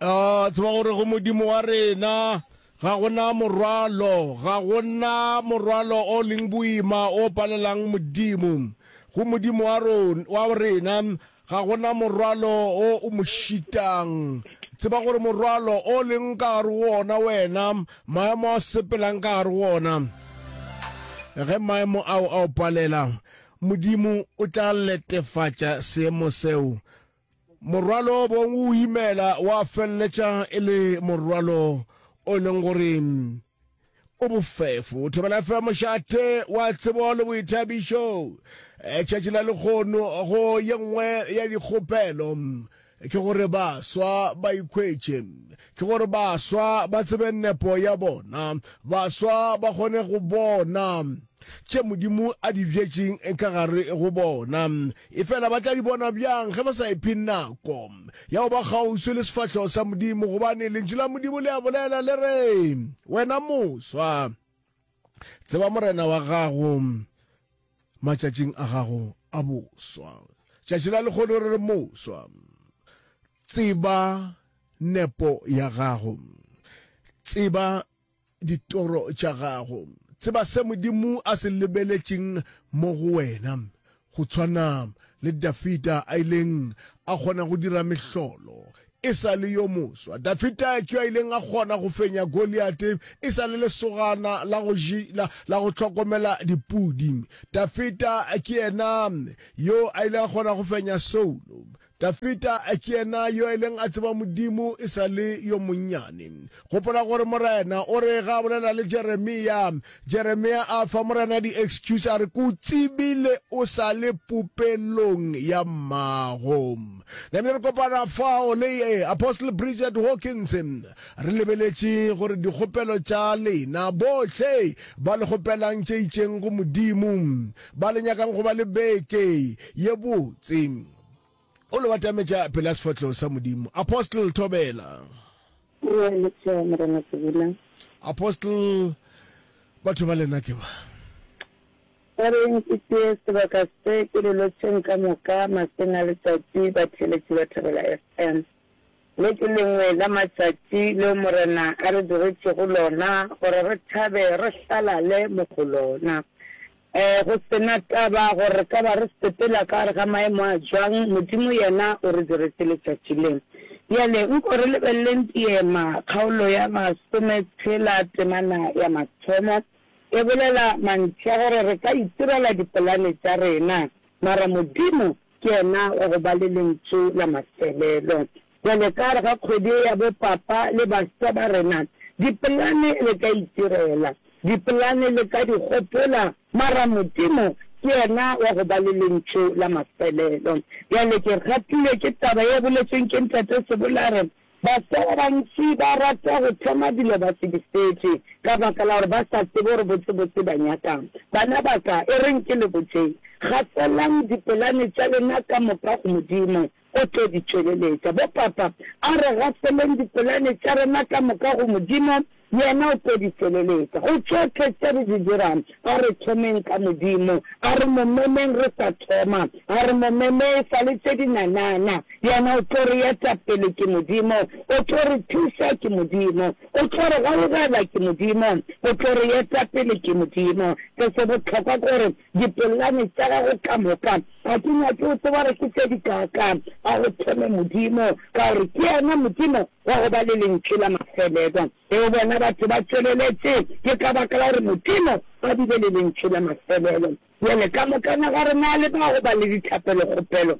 A tseba gore go Modimo wa rena ga gona morwalo, ga gona morwalo o leng boima o palelang Modimo. Go Modimo wa rona wa rena ga gona morwalo o o mo šitang. Tseba gore morwalo o leng ka gare go ona wena, maemo a sepelang ka gare go ona, ge maemo ao a o palela, Modimo o tla letefatša seemo seo. Morwalo o bong o imela wa feleletša e le morwalo o e leng gore o bofefo. Thobela FM mošate wa tsebo le boithabišo. Tšatši la lekgono go ye nngwe ya dikgopelo. Ke gore baswa ba ikhwetše. Ke gore baswa ba tsebe nepo ya bona. Baswa ba kgone go bona tše Modimo a di bjetšeng ka gare go bona. Efela ba tla di bona bjang ge ba sa iphe nako ya go ba kgauswi le sefahlogo sa Modimo? Gobane Lentšu la Modimo le a bolela, le re, Wena moswa, tseba morena wa gago matšatšing a gago a boswa tšatši la lekgono re re moswa tseba nepo ya gago tseba ditoro tša gago tseba se modimo a se lebeletšeng mo go wena Go tshwana le Dafida a ileng a kgona go dira mehlolo e sa le yo moswa, Dafida ke yo a ileng a kgona go fenya Goliate e sa le lesogana la go, la, la go hlokomela dipudi. Dafida ke yena yo a ilego a kgona go fenya Saulo Dafida ke yena yo a ileng a tseba Modimo e sa le yo monnyane. Gopola gore Morena o re ge a bolela le Jeremia, Jeremia a fa Morena di-excuse a re, Ke o tsebile o sa le popelong ya mmago. Nane re kopana fao le Apostle Bridget Hawkins, re lebeletše gore dikgopelo tša lena bohle ba le kgopelang tše itšeng go Modimo, ba le nyakang go ba le beke ye botse. o le batametša pele ya sefatlhego sa modimo apostle thobela apostle batho ba lena ke ba ba reng ke tee sebaka se ke lelotšheng ka moka maseng a letsatsi ba theletše ba thabela fm Le ke lengwe la matšatši leo Morena a re digetšego lona gore re thabe re hlalale mo go lona. Ee, go se na taba gore re ka ba re sepela ka gare ga maemo a jwang, Modimo yena o re diretše letšatši le. Bjale nko re lebeleleng Diema, kgaolo ya masome tshela, temana ya mathomo, e bolela mantši a gore re ka itirela dipolane tša rena, mara Modimo Ke yena wa go ba le lentšu la mafelelo. Bjale ka gare ga kgwedi ye ya bopapa le baswa ba rena, dipolane le ka itirela, dipolane le ka di gopola, mara Modimo ke yena wa go ba le lentšu la mafelelo. Bjale ke gatilwe ke taba ye boletšweng ke Ntate Sebolare, Baswa ba bantši ba rata go thoma dilo ba se di fetše ka baka la gore ba sa tsebe gore botsebotse ba nyaka'ng. Bana ba ka, e reng ke le botše, Gafelang dipolane tša lena ka moka go Modimo, o tlo di tšweleletša. Bo papa, a re gafeleng dipolane tša rena ka moka go Modimo, Yena o tlo di feleletša. Go tšohle tše re di dirago, a re thomeng ka Modimo. A re mo memeng re sa thoma. A re mo meme e sa le tše dinanana. Yena o tlo re eta pele, ke Modimo. O tlo re thuša, ke Modimo. O tlo re gaugela, ke Modimo. O tlo re eta pele, ke Modimo. Se se bohlokwa ke gore Dipolane tša gago ka moka ga ke nyake o tseba gore ke tše dikaakaa. A go thome Modimo, ka gore ke yena Modimo wa go ba le lentšu la mafelelo. Ge o bona batho ba tšweleletše, ke ka baka la gore Modimo a bile le lentšu la mafelelo. Bjale, ka moka naga rena le ba go ba le dithapelo-kgopelo.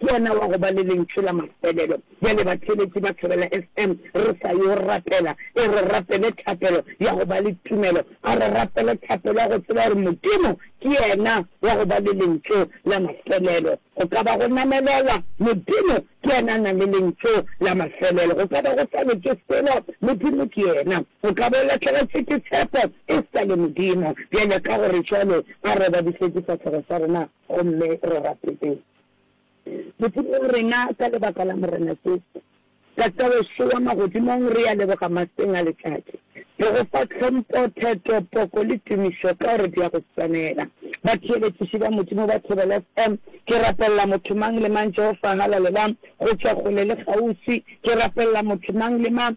Ke ona wa go ba le lentšu la mafelelo. Bjale, batheeletši ba thobela SM. Re sa yo rapela. E re rapele thapelo ya go ba le tumelo. A re rapele thapelo ya go tseba gore Modimo ke yena wa go ba le lentšu la mafelelo. Go ka ba go namelela, Modimo ke yena a nang le lentšu la mafelelo. Go ka ba go sa le ke selo, Modimo ke yena. O ka ba o lahlegetšwe ke tshepo, e sa le Modimo. Bjale, ka gore jwalo, a re obadišwe difahlego tša rena gomme re rapeleng. Modimo wa rena, ka lebaka la Morena Jesu, Tata wešo wa magodimong, re ya leboga maseng a letšatši. Re go fa tlhompo, theto, poko le tumišo ka gore di ya go swanela. Batheeletšiši ba Modimo ba Thobela FM, ke rapelela motho mang le mang, Jehova, halalelang, go tšwa kgole le kgauswi. Ke rapelela motho mang le mang.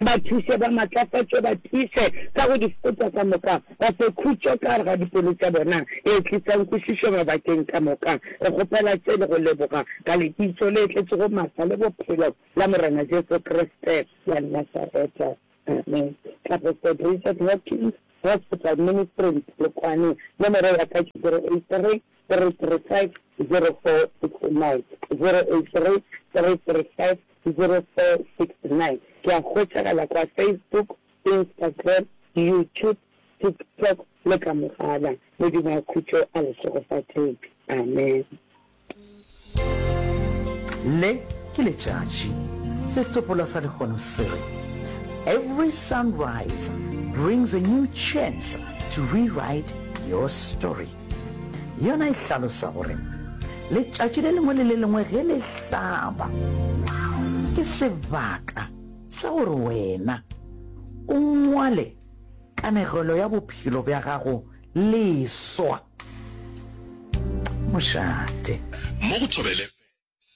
Ba thuše, ba matlafatšwe, ba tiiše ka go di fokotša ka moka, ba fe khutšo ka gare ga dipelo tša bona e tlisang kwešišo mabakeng ka moka. Re kgopela tše le go leboga ka Lebitso le tletšego matla le bophelo la Morena Jesu Kriste wa Nasareta. Amen. Ka go St. Richard Hopkins Hospital, Ministry, Polokwane. Nomoro ya ka ke 083 Ke a hwetšagala kwa Facebook, Instagram, YouTube, TikTok le ka mogala. Modimo a khutšo a le šegofatše. Amen. Le ke letšatši. Setsopolwa sa lehono se re, Every sunrise brings a new chance to rewrite your story. Yona e hlalosa gore letšatši le lengwe le le lengwe ge le hlaba ke sebaka sa gore wena o ngwale kanegelo ya bophelo bja gago leswa. mošate mo go thobele